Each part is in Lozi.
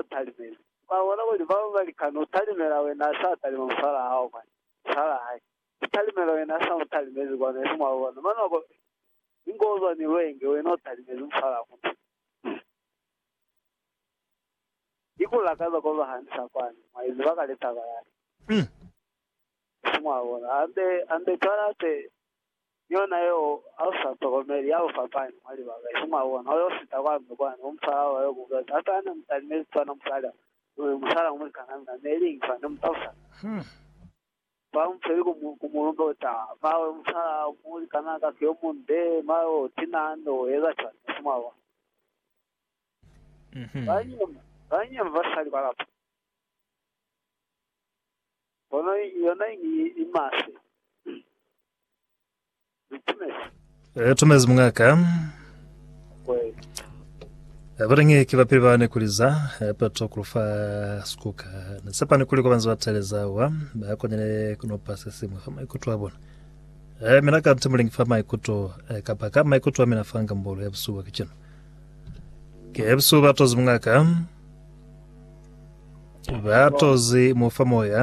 u talimeli. Mwa bona kuli bao ba li kani u talimela wena sa talima musala hao kwani, musala hae, u talimela wena sa mu talimezi kwanu, esi mwa bona. Mane wa bona, ni ngo zwa ni lwenge, wena u talimezi musala wa mutu. Ni ku lakaza ko zwa hanisa kwani, mwa iziba ka litaba yani. Esi mwa bona. Ambe, ambe cwale ape. Ni yona yeo, ha u sa tokomeli, ya bufapani mwa libaka, isi mwa bona, u yo sita kwa ndu kwa ndu, u mu fala oba yo ku butatu. Hape ha ne mu talimezi cwana musali ha mwi musala ku mulikan'a mina, ne li ingi fa ne mu talusa kale. Fa mu feli ku mu, ku mu lumbe u ta, mawe musala ha mu likan'a ka ki yo munde, mawe o tina ha ne u eza cwana, isi mwa bona. Ba nyema, ba nyema basali ba lapa. Pono yona ini ye i maswe. Ni tumezi. Re tumezi mungaka. Kweli. Abalingi ki bapili bane kuliza pato kulufa skuka ne sepani kuli kobanzi bateleza wa ba konele kunopa sesimo fa maikuto a bona e mina ka nti mulingi fa maikuto e kapa ka maikuto a mina fanga mbolo ya busuba kicino ke busuba tozi mungaka Ba tozi mu fa moya.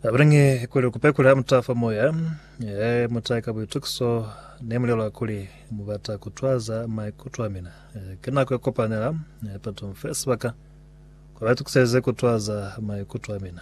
Abulange kuli kupe kula muta fa moya. Eh, muta ka buitukiso ne mulelwa kuli mubata kutwaza maikuto a mina. Eh, ke nako ya kopanela eh, pato mfe sebaka kwa baitukiseze kutwaza maikuto a mina.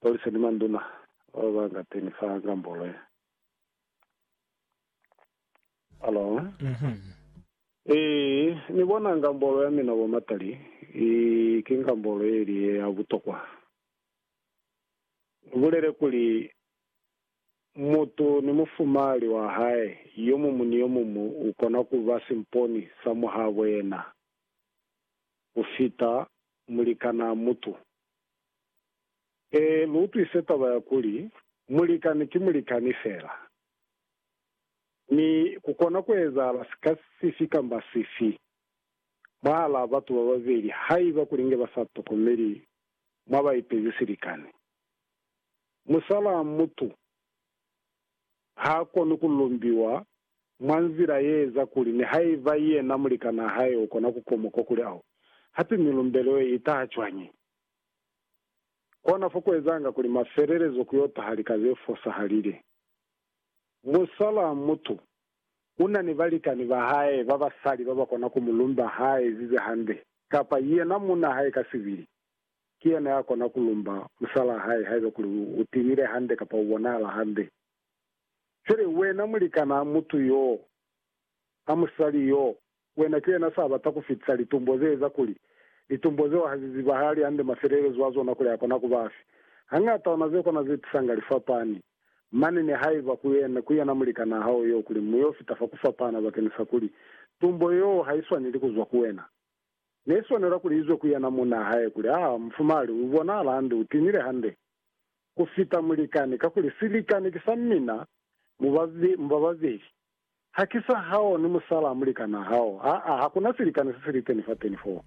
Polisi ni manduna bao ba nga teni fa ngambolo ye. Alo. Ee, ni bona, ngambolo ya mina, bomatali, i, ki ngambolo ye ili ye ya butokwa. Ni bulele kuli, Mutu ni mufumahali wa hae, yomumu ni yomumu u kona ku ba simponi sa muhabo yena ku fita mulikanaa mutu. Ee, lu utwise taba ya kuli, mulikani ki mulikani fela, mi ku kona ku ezahala sika sifi kamba sifi mwahalaa batu ba babeli haiba kuli nge ba sa tokomeli mwa ba ipezi silikani. Musalaa mutu. ha koni ku lumbiwa mwa nzila ye eza kuli nihaiba yena mulikanaa hae u kona ku komoka kuli ao. Hape milumbelo ye i taha cwañi? Kona fo ku ezanga kuli mafelelezo ku yo taha lika ze fosahalile. Musalaamutu u na ni balikani ba hae ba basali ba ba kona ku mu lumba ha ezize hande, kapa yena muuna hae ka sibili. Ki yena ya kona ku lumba musalaa hae haiba kuli u tiile hande kapa u bonahala hande. Cwale, wena mulikanaa, mutu yoo, a musali yoo, wena ki yena sa bata ku fitisa litumbo ze eza kuli, litumbo zeo ha zi zibahali hande mafelelezo a zona kuli a kona ku ba afi. Hañata ona ze kona ze tisanga lifapani. Mane ni haiba ku yena, ku yena mulikanaa hao yoo, kuli mu yo fita fa ku fapana bakeni sa kuli, tumbo yoo ha i swaneli ku zwa ku wena. Ne swanela kuli izwe ku yena munna hae kuli, Ha, mufumali, u bonahala hande, u tinile hande ku fita mulikani, kakuli silikani ki sa mina, mu ba, mu ba babeli. Ha ki sa hao ni musalaa mulikanaa hao. Aa, ha ku na silikani se si li teni fateni foo.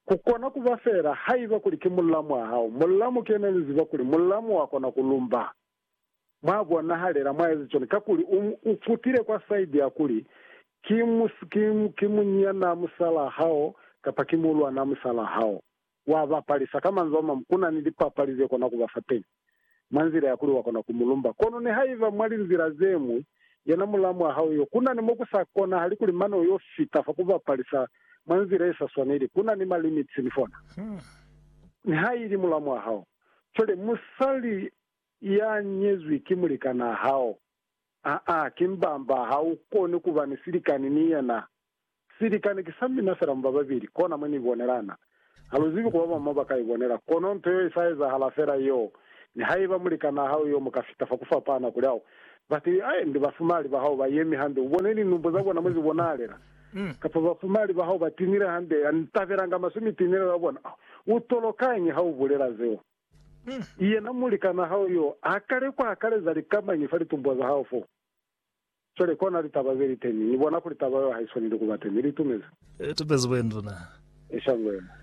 Ku kona ku ba feela haiba kuli ki mullamu wa hao. Mullamu ki yena ni ziba kuli mullamu wa kona ku lumba. Mwa bonahalela mwa ezi cwani kakuli u, u futile kwa side ya kuli, Ki mu, ki, ki munyinyanaa musalaa hao, kapa ki muuluwanaa musalaa hao. Wa ba palisa. Ka manzwi a mañwi, ku na ni lipapali ze kona ku ba fa teñi, mwa nzila ya kuli wa kona ku mu lumba. Kono nihaiba mwa linzila ze ñwi, yena mulaa mwa hao yo, ku na ni mo ku sa konahali kuli mane u yo fita fa ku ba palisa mwa nzila ye sa swaneli. Ku na ni ma limits ni fona, nihaili mulaa mwa hao. Cwale, musali. Iya nyezwi ki mulikanaa hao. Aa, ki mbamba, ha u koni ku ba ni silikani ni yena. Silikani ki sa mina fela mu ba babili, kona mwe ni ibonelana. Ha lu zibi ku ba bañwi mo ba ka ibonela, kono nto yeo i sa ezahala fela yeo. Nihaiba mulikanaa hao yo mu ka fita fa ku fapana, kuli, Au, batu ai ndi bafumali ba hao ba yemi hande, u bone linumbo za bona mwe zi bonahalela. Kapa, Bafumali ba hao ba tinile hande, ni tabelanga maswe mitinelo ya bona. Au, u tolokañi ha u bulela zeo? Yena mulikan'a hao yo a kale ku akaleza lika mañi fa litumbuwa za hao fo? Cwale kona litaba ze li teñi. Ni bona kuli taba yeo ha i swaneli ku ba teñi. Li itumezi. I itumezi bo induna. I shango yena.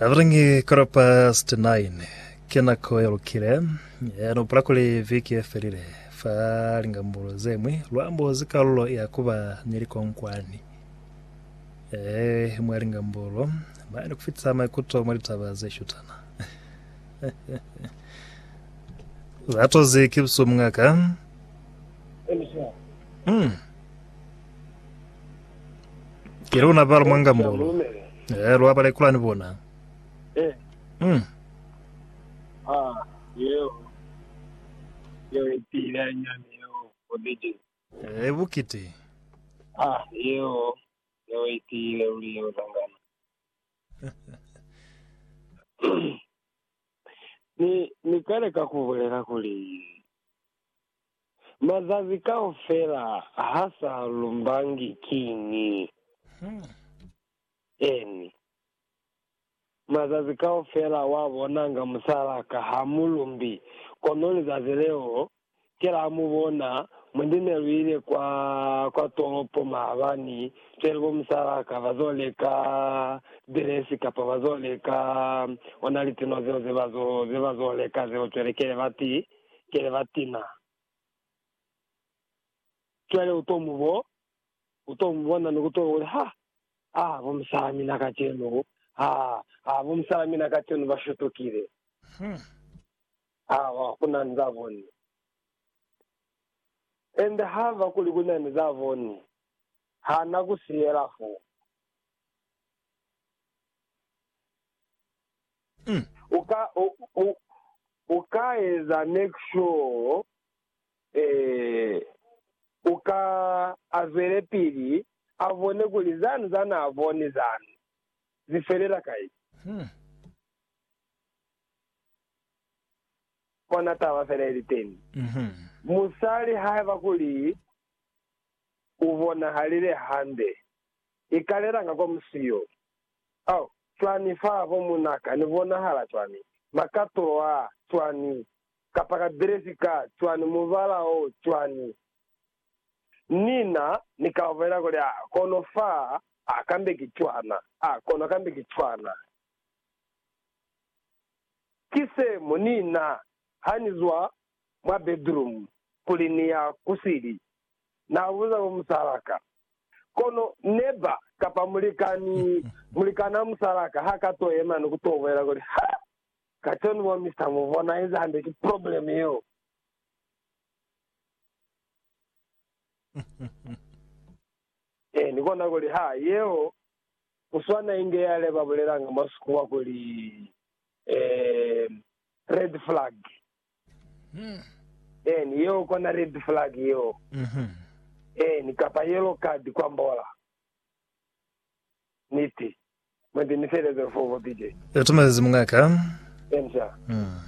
Avilingi, quarter past nine. Ki nako ye lukile. Ni upula kuli viki ye felile, fa lingambulo ze ñwi, lu ambozi kalulo ya ku ba ni likonkwani. Ee, mwa lingambolo, ba ni kufitisa maikuto mwa litaba ze shutana. Za tozi ki busu mungaka. Mm. Ki luna balo mwa ngambolo. Ee, lwa bala ikula ni bona. Eh, Mm. ah, yeo. Yeo ipila nyani yeo, o DJ. Re bukiti. Ah, yeo ne we itiile luli yeo zangano. Ni, Ni ka leka ku bulela kuli, mazazi kaufela ha sa lumbangi. Kiñi? Eeni. Mazazi kaufela wa bonanga musala ka ha mu lumbi, kono lizazi leo ke la mu bona mwi ndi ne lu ile kwa kwa tolopo maabani cwale bo musala ka ba zo leka dress kapa ba zo leka ona litino zeo ze ba zo ze ba zo leka zeo cwale kele ba ti kele ba tina cwale u to mu bo U to mu bona ni ku to hula, Ha! Ha! Bo musala mina kacenu! Ha! Ha! Bo musala mina kacenu ba shutukile! Ha ku na ni za boni. Ende haba kuli ku na ni za boni, ha na ku siyela fo. U ka, u, u, u ka eza make sure, ee. u ka a zwelepili a bone kuli zani za naa boni zani zi felela kai. Kona taba fela ili teni, musali haiba kuli u bonahalile hande, i ka lelanga kwa musi yo. Oh, cwani fa bo munaka ni bonahala cwani, makatulo a cwani kapa ka dresi ka cwani, mubala o cwani. Ni na ni ka bolela kuli, A kono fa, a kambe ki cwana, a kono kambe ki cwana. Ki se mo ni na, ha ni zwa mwa bedroom kuli ni ya ku sili, na buza bo musal'a ka. Kono neba, kapa mulikani, mulikan'a musal'a ka ha ka to yema ni ku to bolela kuli, Ha! Katoni mo Mister mu bona eza hande ki problem yeo. Eeh ni kona kuli ha yeo kuswana inge yale ba bulelanga mwa sikuwa kuli eeh red flag. Eeh ni yeo kona red flag yeo. Eeh ni kapa yellow card kwambola. Niti. Mwendi ni felezelo fo bobide. Itumelezi mungaka. Enja. Mm.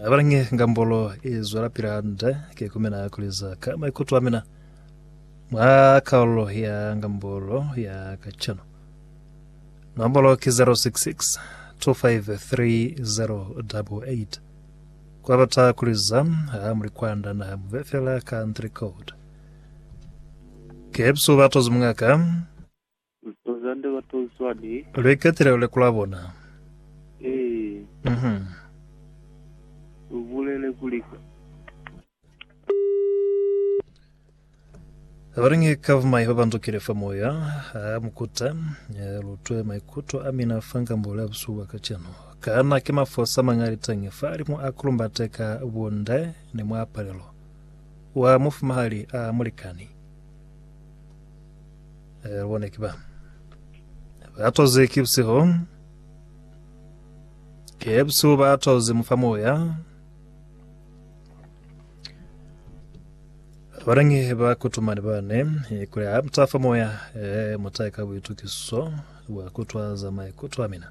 Abala nge ngambolo i zwela pila hande, ke ku mina kuli za ka maikuto a mina mwa kalulo ya ngambolo ya kacenu. Nombolo ki 066 253 Kwa bata kuli za ha muli kwanda naha muve fela country code. Kepsu ba tozi mungaka. Tozi hande ba tozi swani. Lwe katile lule kula bona. Ee. Mhm. Ubulele kuli ka. Abaringe kavumai ba bandukile fa moya ha mukuta ya lutwe maikuto a mina fa nkambule abusu bwa kacenu. Kana ke mafosa mangalitenge fa alimu a kulumbate ka bunde ni mwa palelo? Wa mufumahali a mulikani. Eh, lubone ki ba. Ba toze ki busiho. Ke busiho ba toze mufa moya. Barangi ba kutumani bane eh, kuli ha mutafa moya eh, mutaye ka buitukiso bwa kutwaza maikutwa mina.